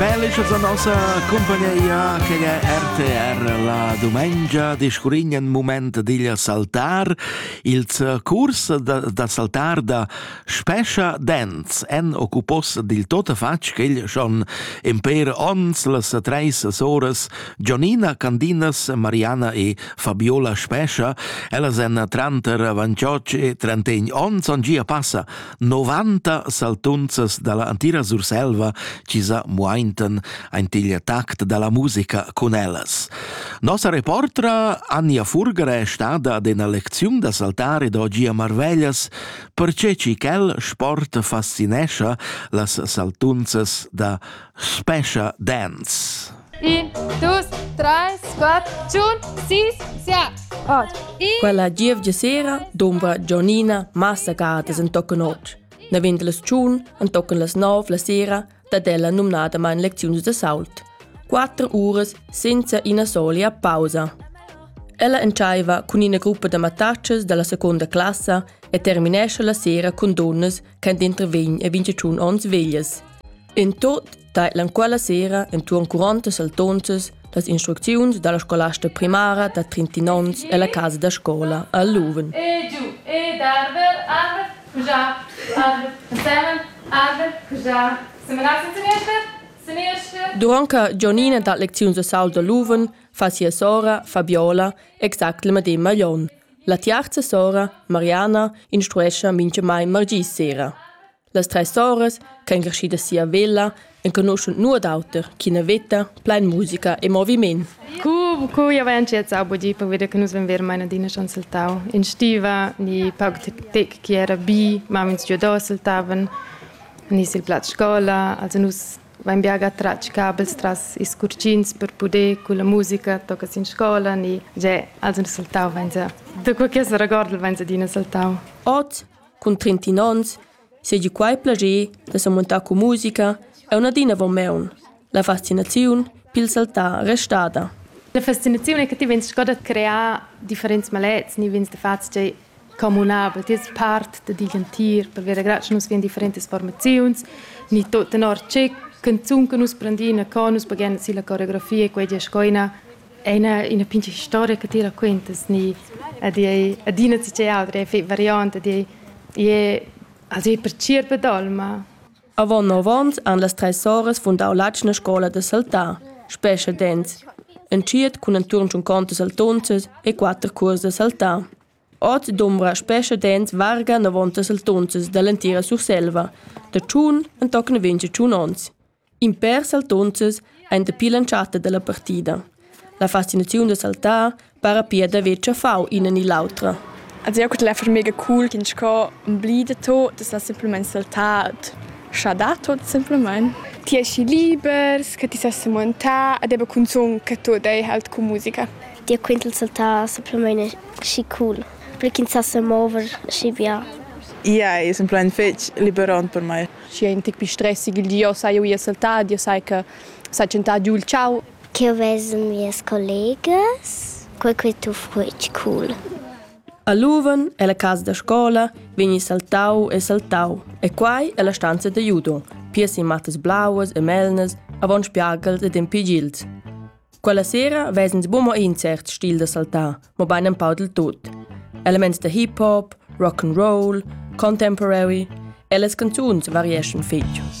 Bellischas a nossa compagnia che è RTR la domenica discurrigna in moment digl saltar. Il curs da, da saltar da Spescha Dance en occupos dil tota fatg ch'el schon in per ons las treis soras Gionina Candinas, Mariana e Fabiola Spescha. Ellas en tranter 28 e 31 ons on gia passa 90 saltunzas dalla antira Surselva chi sa muaintan aint il tact dalla musica cun ellas. Nossa reportra Anja Furger è stada ad una lecziun da saltare d'oggi a Marveglias perché ci quel sport fascinescia las saltunzas da Special Dance. Un, dus, treis, quatter, tschun, sis, siat. Quella gievgia sera dumba Gianina massa gadas en tocca notg. Ne vint las tschun, en toccen las nov la sera, dat ella numnadamain lecziuns de sault. Quattro uras senza ina solia pausa. Ella entschaiva cun ina gruppa da mattatschas dalla seconda classa e terminesce la sera con donnas che intervegn e 21 onns veglias. In tot tailan quella sera entuorn 40 saltonzas las instrucziuns dalla scolasta primara da 31 onns ella casa da scola a Luven. E giu, e darver, arver, pujar, arver, semen, arver, pujar, semenar sin seniester, seniester. Durante Gionina da lecziuns a Saul da Luven fa sia sora Fabiola exact le medem maglion. La tiarza sora, Mariana, instruescha mincha mai margis sera. Las treis soras ch'ein creschidas si a Vella enconuschan nuot auter ch'ina veta plein musica e moviment. Cu, cu jau hai entschiet budì per vedere che nus vein ver mai adina schon saltau in stiva ni pauc tec che era bi ma ins giu da saltaven ni sil plaz scola also nus vein bia tratg cabels tras ils curcins per poder con la musica tocca in scola ni ge also nus saltau vein se da quel che se regorda vein se adina saltau Oz cun trentin onns seigi quei plager da semuntar cun musica aunc adina avon maun. La fascinaziun pil saltar restada. La fascinaziun è che ti vegns sco da crear differents malets, ni vegns da fatg tgei communabel, ti es part da digl entir, per vera grazia nus vien differentas formaziuns, ni tot tenor tge canzun che nus prendina, co nus paghen si la coreografia, quei dia sco ina È ina, ina pincha storia che ti raquentas ni ed ei adina tgei auter, ei variant ed ei, ei, also ei pertgirba d'olma. Avon nov onns han las treis soras fundau l'atgna scola da saltar, Spescha dents, entschiet cun enturn tschun conto saltunzas e quatter cuors da saltar. Oz dumbra Spescha dents varga 90 saltunzas dall'entira Surselva, da tschun entochen 28 onns. In pèr saltunzas ein dapi l'entschatta dalla partida. La fascinaziun da saltar para pia d'haver tschaffau ina ni l'autra. Also eu cudel fer mega cool ch'ins sco blida to da sa simplamain saltar scha da tot simpelmain. Ti esci libers, che ti sa semontà ed eba cunzun che tu dei halt cu musica. Dir quintel saltar simpelmain schi cool, per ch'ins sa semover schi bia. Ia è simpelmain fetg liberant per mai. schi ein tic pi stress igl di, io sai uia saltad, io sai che sai tschentà giù il ciao. Ch'eu ves mias collegas, quei quei tu fruitg cool. A Luven, ella casa da scola, vegni saltau e saltau, e quai è la stanza da judo, pias in mattas blauas e melnas, avon spiagels ed en pigils. Quella sera ves'ins buca mo in cert stil da saltar, mobein empau dil tut. Elements da hip hop, rock and roll, contemporary e las canzuns varieschan fetg.